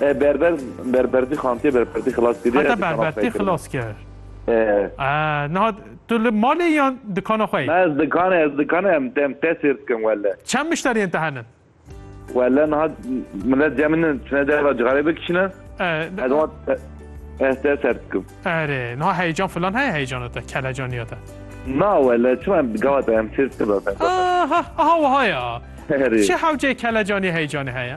Berber berbertî xantê berbertî xilas kiriye. Heta berbertî xilas kir. Niha tu li malê yan dikana xwe yî? Me ez dikana ez dikana em em te sêr dikim wele. Çend mişteriyên te henin? Wele niha milet cem min çine derva cixarê bikişine. Ez te ser dikim. Erê niha heyecan filan heye heyecana te kelecaniya te. Na wele çima em gava te em sêr dikim. Aha aha wiha ya. Çi hewceyê kelecaniya heyecanê heye?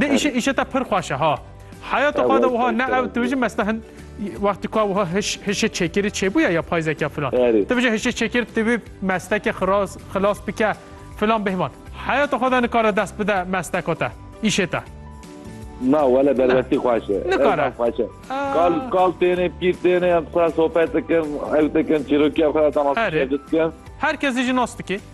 Dê îşe îşe te pir xweş e ha. Heyata xwe de wiha ne ew tu bijî mesta hin wextî ku wiha hiş hişê çekirî çêbûye ya payzeke filan. Tu bijî hişê çekir tu vê mesteke xilas xilas bike filan bêhman. Heyata xwe de nikare dest bide mesteka te îşê te. Na wele derwestî xweş e. Nikare. Xweş e. Kal kal têne pîr têne em xwe sohbet dikin ew dikin çîrokiya xwe de tamam dikin. Herkes jî nas dikê.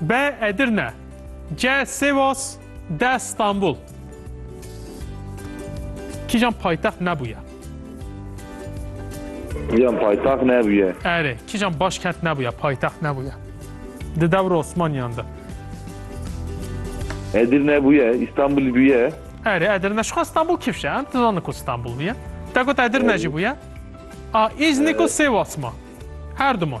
B Edirne C Sêwas D Stenbul Kîjan paytext nebûye? Kîjan paytext nebûye? Erê, kîjan başkent nebûye, paytext nebûye? Di dewra Osmaniyan de. Edirne bûye, Îstanbul bûye. Erê, Edirne şixwe Stenbul kifşe, em dizanin ku Stenbul bûye. Te got Edirne jî bûye. A, Îznik û Sêwas ma. Her du man.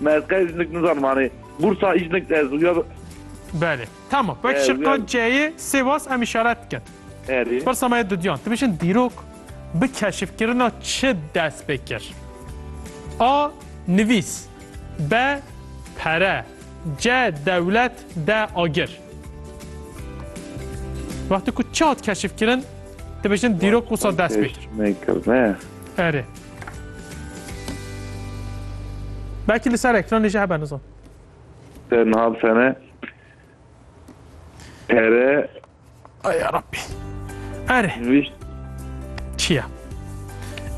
Me ez qey jinik nizanim anê. Bursa îjinik te ez uya Belê. Tamam. Wek Ee, şiqa uyan. C'yê Sêwas em îşaret dikin. erê. Pirsa me yê dudiyan. Tu bêjin dîrok bi keşifkirina çi dest pê kir? A. Nivîs. B. Pere. C. Dewlet. D. Agir. Wextê ku çi hat keşifkirin, tu bêjin dîrok wisa dest pê kir. Nekir ne. Erê. Belki li ser ekranê jî hebe nizan. Te niha sene pere Ay ya Rabbî. Erê. Nivîşt. Çi ye?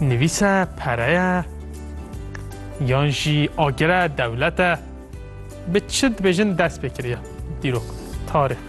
Nivîse, pere ye yan jî agire, dewlete bi çi dibêjin dest pê kiriye dîrok, tarîx.